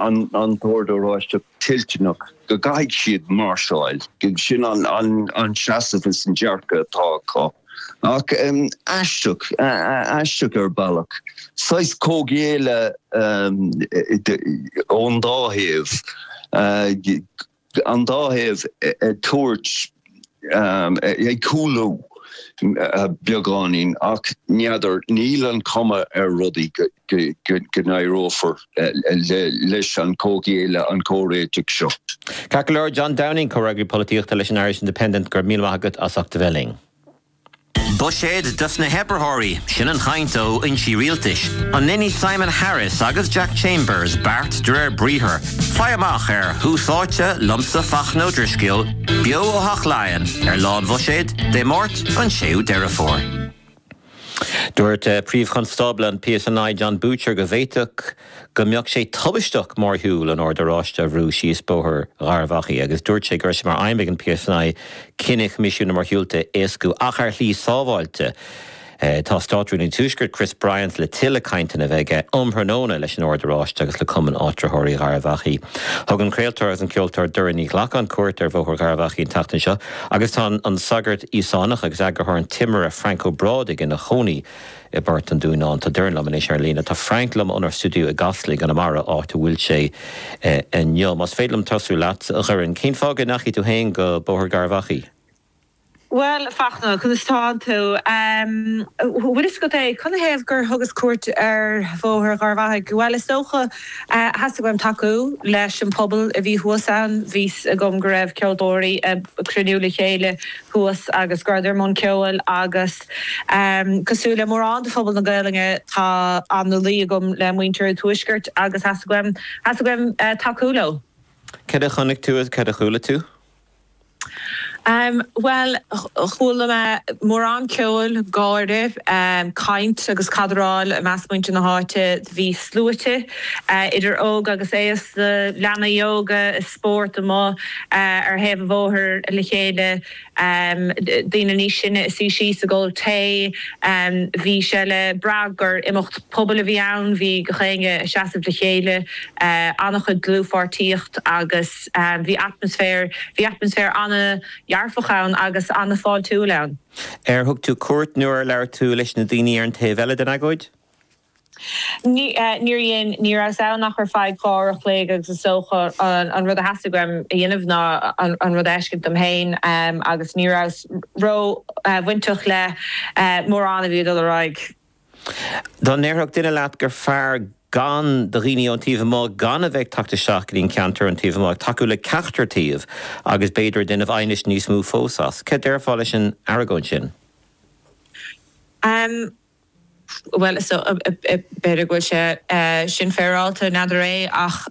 an tOrd Oráisteach toilteanach go gcaithfidh siad máirseáil. Sin an seasamh is an dearcadh atá acu. Ach aisteach, aisteach ar bhealach. Saghas comhghéilleadh ón dá thaobh. an dá thaobh ag tabhairt, ag cúlú beagáinín, ach n'fheadar, níl an chuma ar rudaí go n-éireofar leis an comhghéilleadh, an comhréiteach seo. Ceart go leor, John Downing, comhfhreagraí polaitíochta leis an Irish Independent, go raibh míle maith agat as ucht a bheith linn. Buiséad dos na hoibritheoirí, sin an chaint ó fhoinsí rialtais. An ndéanfaidh Simon Harris agus Jack Chambers beart de réir briathar? Faigh amach ar Thús Áite liomsa Fachtna Ó Drisceoil beo ó Theach Laighean ar Lá an Bhuiséid, Dé Máirt, an 6ú Deireadh Fómhair. Dúirt Príomh-Chonstábla an PSNI Jon Boutcher go bhféadfadh go mbeadh sé tubaisteach mórshiúl an Oird Oráiste a bhrú síos bóthar Gharbh Achaidh agus dúirt sé go raibh sé mar aidhm ag an PSNI cinneadh Choimisiún na Mórshiúlta a éascú ach ar shlí sábháilte. Tá Státrúnaí an Tuaiscirt, Chris Bryant, le tuilleadh cainteanna a bheith aige um thráthnóna leis an Ord Oráiste agus le Cumann Áitritheoirí Gharbh Achaidh. Thug an craoltóir agus an ceoltóir Doireann Ní Ghlacáin cuairt ar bhóthar Gharbh Achaidh an tseachtain seo agus tá an sagart Íosánach agus eagarthóir An Timire, Frank Ó Brádaigh, ina chónaí i i bPort an Dúnáin. Tá Doireann liom anois ar an líne. Tá Frank liom ónár stiúideo i gCasla i gConamara, áit a bhfuil sé inniu. Más féidir liom tosú leat, a Dhoireann, cén fáth go ndeachaigh tú féin go Bóthar Gharbh Achaidh? Bhuel, Fachtna, conas tá tú? Bhuel, is agat é. Canathaobh gur thugas cuairt ar Bhóthar Gharbh Achaidh? Bhuel, is dócha, theastaigh uaim tacú leis an bpobal a bhí thuas ann. Bhí a fhios agam go raibh ceoltóirí ag cruinniú le chéile thuas agus go rabhadar i mbun ceoil agus, Cosúil le mórán de phobal na Gaelainne, tá an-luí agam le muintir an Tuaiscirt agus theastaigh uaim, theastaigh uaim tacú leo. Cad a chonaic tú agus cad a chuala tú? Bhuel, chuala mé mórán ceoil, gáire, caint agus cadráil i measc muintir na háite. Bhí sluaite idir óg agus aosta, leanaí óga i spórt amuigh ar thaobh an bhóthair le chéile. daoine níos sine ag suí síos ag ól tae. Bhí sé le brath gur imeacht pobail a bhí ann, bhí gach éinne ag seasamh le chéile, an-chuid dlúthpháirtíocht agus bhí atmaisféar, bhí atmaisféar an-dhearfach ann agus an-fháiltiúil ann. Ar thug tú cuairt nó ar labhair tú leis na daoine ar an taobh eile den agóid? Níor dhein, ní rabhas ann ach ar feadh dhá uair a chloig agus is dócha an rud a theastaigh uaim a dhéanamh ná an rud a fheiscint dom féin agus ní rabhas ró-bhainteach le mórán a bhí ag dul ar aghaidh. Dá ndéarfadh duine leat gur fearr do dhaoine ón taobh amuigh gan a bheith ag teacht isteach go dtí'n ceantar ón taobh amuigh, ag tacú le ceachtar taobh agus b'fhéidir ag déanamh aighnis níos mó fós as, céard déarfá leis an argóint sin? Bhuel, so, b'fhéidir go bhfuil sé sin féaráilte, n'fheadar é, ach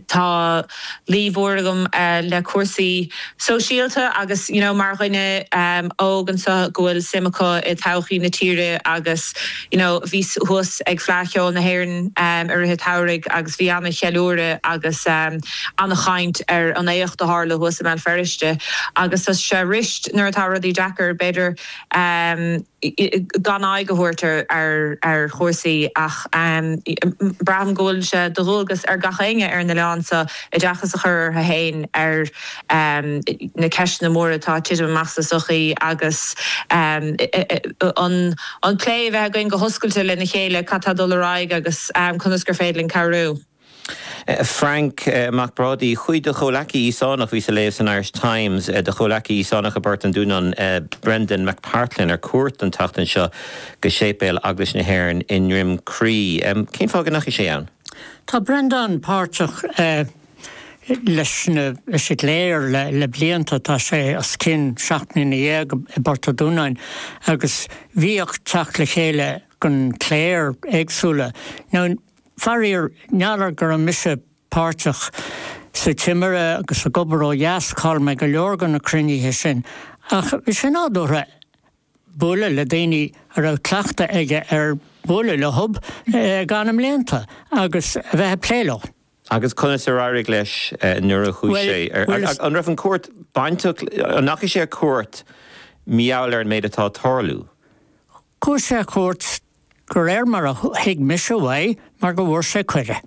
tá luí mhór agam le cúrsaí sóisialta agus, you know, mar dhuine óg anseo go bhfuil suim acu i dtodhchaí na tíre agus, you know, bhíos thuas ag Fleadh Cheoil na hÉireann i rith an tsamhraidh agus bhí an-cheiliúradh agus an-chaint ar an éacht a tharla thuas i mBéal Feirste agus tá sé arís nuair atá rudaí deacair, b'fhéidir. gan aghaidh a thabhairt ar chúrsaí ach braithim go bhfuil sé de dhualgas ar gach éinne ar an oileán seo oideachas a chur orthu féin ar na ceisteanna móra atá ag titim amach sa tsochaí agus an plé a bheith againn go hoscailte lena chéile cad tá ag dul ar aghaidh agus conas gur féidir linn cabhrú. Frank Mac Brádaigh, chuaigh do chomhleacaí Íosánach, bhíos a léamh san Irish Times, do chomhleacaí Íosánach i bPort an Dúnáin, Brendan McPartlan, ar cuairt an tseachtain seo go séipéal Eaglais na hÉireann i nDroim Crí. Cén fáth go ndeachaigh sé ann? Tá Brendan páirteach leis na leis an gcléir le blianta, tá sé os cionn seacht mbliana dhéag i bPort an Dúnáin agus bhíodh teacht le chéile ag an gcléir éagsúla. Now. Faraor, ní léir go raibh mise páirteach sa timire agus ag obair ó dheas, chaill mé go leor de na cruinnithe sin, ach bhí sé nádúrtha bualadh le daoine a raibh cleachtadh aige ar bhualadh leo le go leor blianta agus a bheith ag plé leo. Agus conas ar éirigh leis nuair a chuaigh sé ar ais? An raibh an chuairt bainteach, an ndeachaigh sé ar cuairt mar gheall ar an méid atá ag tarlú? Chuaigh sé ar cuairt, de réir mar a thuig mise uaidh, mar go bhfuair sé cuireadh.